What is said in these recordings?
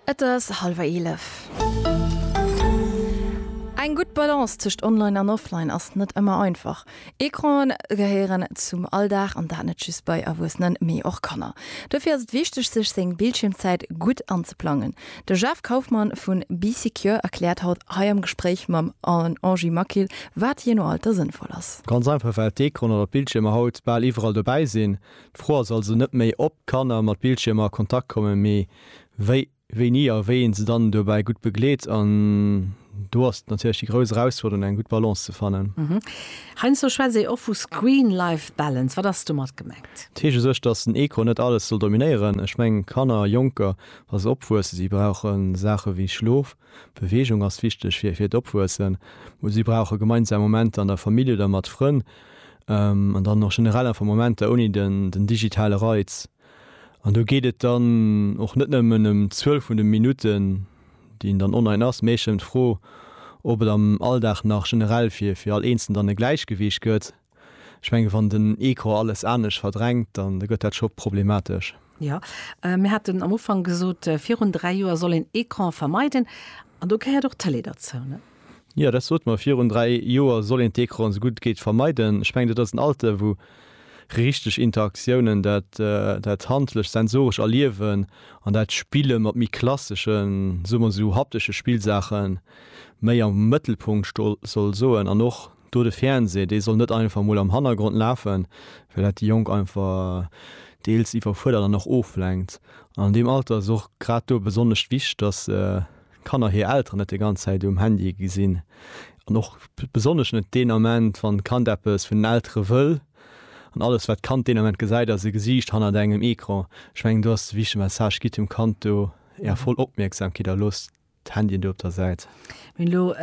Et ass hallwer eelef. Eng gutt Balance tëscht Online an Offline ass net ëmmer einfach. Ecranen gehéieren zum Alldag an dat net just bei Erwuessenen, mee och Kanner. Dofir ass et wichteg, sech seng Bildschiermzäit gutt anzeplangen. De Jeff Kaufmann vu Bee Secure erkläert haut hei am Gespréich mam Angie Maquil, wat jee no Alter sënnvoll ass. Ganz einfach, well d'Ecranen oder d'Bildschiermer haut bal iwwerall dobäi sinn. D'Fro ass also net méi, ob Kanner mat Bildschiermer a Kontakt kommen, mee wéi, wéini a wéi een se dann dobäi gutt begleet. An do ass natierlech déi grouss Erausfuerderung, eng gutt Balance ze fannen. Heiansdo schwätzt ee och vu Screen-Life Balance. Wat ass domat gemengt? Et heescht u sech, dass den Ecran net alles soll dominéieren. Ech mengen, Kanner, Jonker, wa se opwuessen, si brauche Saache wéi Schlof. Beweegung ass wichteg fir fir d'Opwuessen. Si brauche gemeinsam Momenter an der Famill oder mat Frënn an dann och generell einfach Momenter ouni den den digitale Reiz. An do geet et dann och net nëmmen ëm d'Zuel vun de Minutten, déi een dann online ass, mee eech ëm d'Fro, ob et am Alldag nach generell fir fir all Eenzelen dann e Gläichgewiicht gëtt. Ech mengen, wann den Ecran alles anescht verdrängt, dann gëtt dat scho problematesch. Jo, mir haten am Ufank gesot, virun dräi Joer soll een Ecran vermeiden, an do gehéiert och d'Tëlee derzou, ne? Jo, dat sot mer. Virun dräi Joer soll een d'Ecranen esou gutt et geet vermeiden. Ech mengen, dat ass en Alter, wou richteg Interaktiounen, dat, dat handlecht, sensorescht Erliewen an dat Spille mat méi klasseschen, soe mer esou haptesche Spillsaachen, méi am Mëttelpunkt sto soll soen an och Do de Fernseh, dee soll net einfach mol am Hannergrond lafen, well dat déi Jonk einfach deels iwwerfuerdert an och oflenkt. An an deem Alter ass et och grad do besonnesch wichteg, dass d'Kanner hir Elteren net déi ganz Zäit um Handy gesinn. An och besonnesch net deen Ament, wann d'Kand eppes vun den Eltere wëll. An alles, wat d'Kand deen Ament gesäit, ass e Gesiicht hannert engem Ecran. Ech mengen, do ass de wichtege Message, Gitt dem Kand do är voll Opmierksamkeet a loosst D'Handyen do op der Säit. Mir hunn elo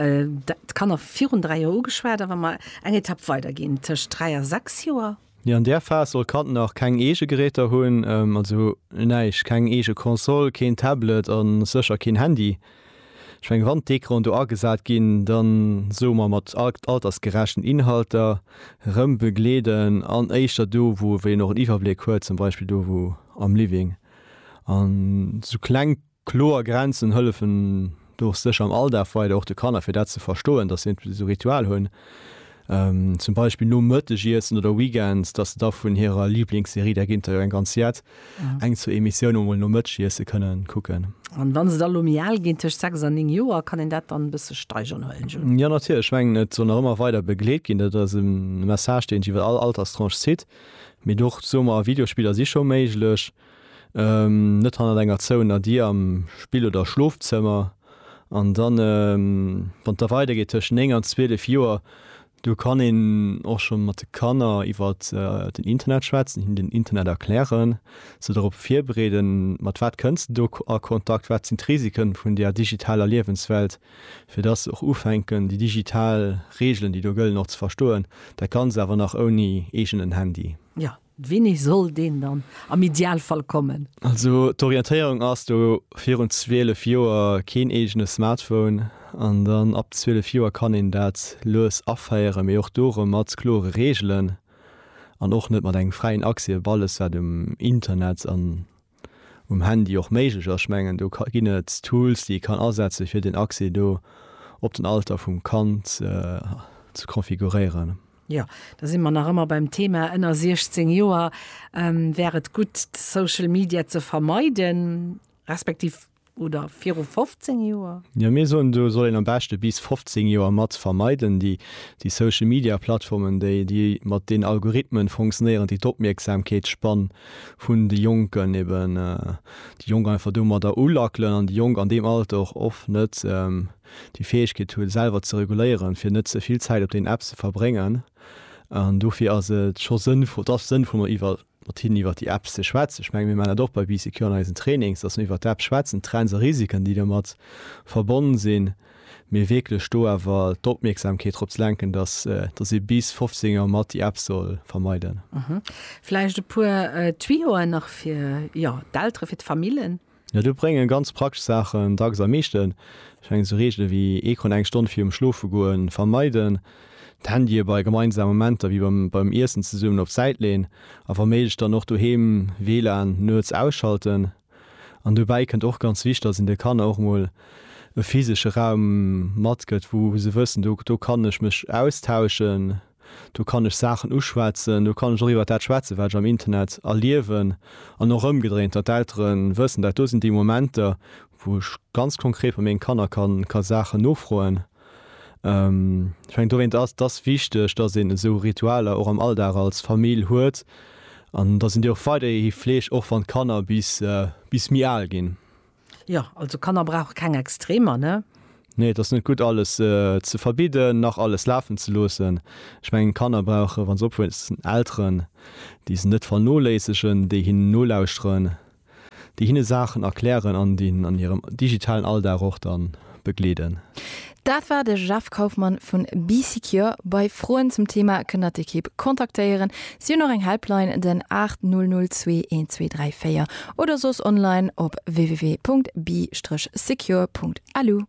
d'Kanner virun dräi Joer ugeschwat, a wa mer eng Etapp weider ginn, tëscht dräi a sechs Joer? Jo, an där Phas soll d'Kand nach keng eege Geräter hunn, also näischt, keng eege Console, keen Tablet a sécher keen Handy. Ech mengen, wann d'Ecranen do agesat ginn, da soe mer mat altersgerechten Inhalter, rëm begleeden an éischter do, wou een och en Iwwerbléck huet, zum Beispill do wou am Living an esou kleng. Kloer Grenzen hëllefen dach sécher am Alldag weider, och de Kanner, fir dat ze verstoen, dass se iergendwéi esou Ritual hunn, zum Beispill nom Mëttegiessen oder weekends, dass se da vun hirer Liblingsserie, där géint der jo eng ganz jett, eng, zwou Emissioune mol nom Mëttegiesse kënnen kucken. An wa se da lo méi al ginn, tëscht sechs a néng Joer, kann een dat dann e bësse steigeren, huelen ech un? Jo, natierlech. Ech mengen, et soll nach ëmmer weider begleet ginn. Dat ass e Message, deen sech iwwer all Alterstranche zitt. Mee dach, soe mer, Videospiller si scho méiglech. net hannert enger zouener Dier am Spill oder Schlofzëmmer. An dann, wann da weidergeet tëschent 9 an 12 Joer, do kann een och scho mat de Kanner iwwer den Internet schwätzen, hinnen den Internet erklären, se dorop virbereeden, mat wat kënns de do a Kontakt, wat sinn d'Risiken vun där digitaler Liewenswelt, fir datt se och ufänken, déi digital Reegelen, déi do gëllen, och ze verstoen, dat Ganzt awer nach ouni eegenen Handy. Jo, Wini soll deen dann am Idealfall kommen? Also d'Orientéierung ass do virun 12 Joer keen eegene Smartphone an dann ab 12 Joer kann een dat lues aféieren, mee och do erëm mat klore Reegelen an och net mat engem fräien Accès op alles wat um Internet an um Handy och méiglech ass. Ech mengen do ginn et Tools déi ee kann asetze fir den Accès do op den Alter vum Kand ze configuréieren. Jo, da si mer nach ëmmer beim Thema ënner 16 Joer. Wär et gutt Social Media ze vermeiden, respektiv Oder viru 15 Joer? Jo, mir soen, do soll een am beschte bis 15 Joer mat vermeiden. Déi Social Media Plattformen, déi déi mat den Algorithmen fonctionnéieren, déi d'Opmierksamkeetsspann vun de Jonken eben, déi Jonk einfach domadder ulackelen an déi Jonk an deem Alter och oft net déi Fäegkeet hu selwer ze reguléieren, fir net ze vill Zäit op den Apps ze verbréngen. An dofir ass et scho sënnvoll, et ass sënnvoll mer iwwer. mat hinnen iwwer déi Apps ze schwätzen. Ech menge mir maachen dat och bei BCQ an eisen Trainings, datt mir iwwer d'Apps schwätzen, d'Trends a Risiken, déi domat verbonnen sinn, mee wierklech do awer d'Opmierksamkeet drop ze lenken, datt ee bis 15 Auer mat déi Apps soll vermeiden. Vläicht e puer Tuyauxen nach fir d'Elteren, fir d'Famillen? Jo, do bréngen ganz praktesch Saachen dacks am meeschten. Ech mengen esou Reegele wéi Ecran eng Stonn virum Schlofegoen vermeiden, d'Handye bei gemeinsame Momenter wéi beim Iessen zesummen op d'Säit leen a wa méiglech dann och doheem WLAN nuets ausschalten. An dobäi kënnt och ganz wichteg, dass een de Kanner och mol e physesche Raum matgëtt, wou se wëssen, do kann ech mech austauschen. Do kann ech Saachen uschwätzen, do kann ech och iwwert dat schwätzen, wat ech am Internet erliewen. An och ëmgedréint, datt d'Eltere wëssen, dat do sinn déi Momenter, wou ech ganz konkret bei menge Kanner ka Saachen nofroen. Ech mengen, dowéinst ass et wichteg, datt een esou Ritualer och am Alldag als Famill huet an datt een déi och weiderhi fleegt, och wann d'Kanner bis méi al ginn. Jo, also Kanner brauche keng Extremer, ne? Nee, et ass net gutt, alles ze verbidden, nach alles lafen ze loossen. Ech mengen, Kanner brauchen, wa se opwuessen, Elteren, déi se net vernoléissegen, déi hinnen nolauschteren, déi hinne Saachen erklären an déi hinnen an hirem digitalen Alldag och dann begleeden. Dat war de Jeff Kaufmann vun Bee Secure. Bei Froen zum Thema kënnt der d'Ekipp kontaktéieren. Si hunn och eng Helpline, den 80021234 oder soss online op www.bee-secure.lu.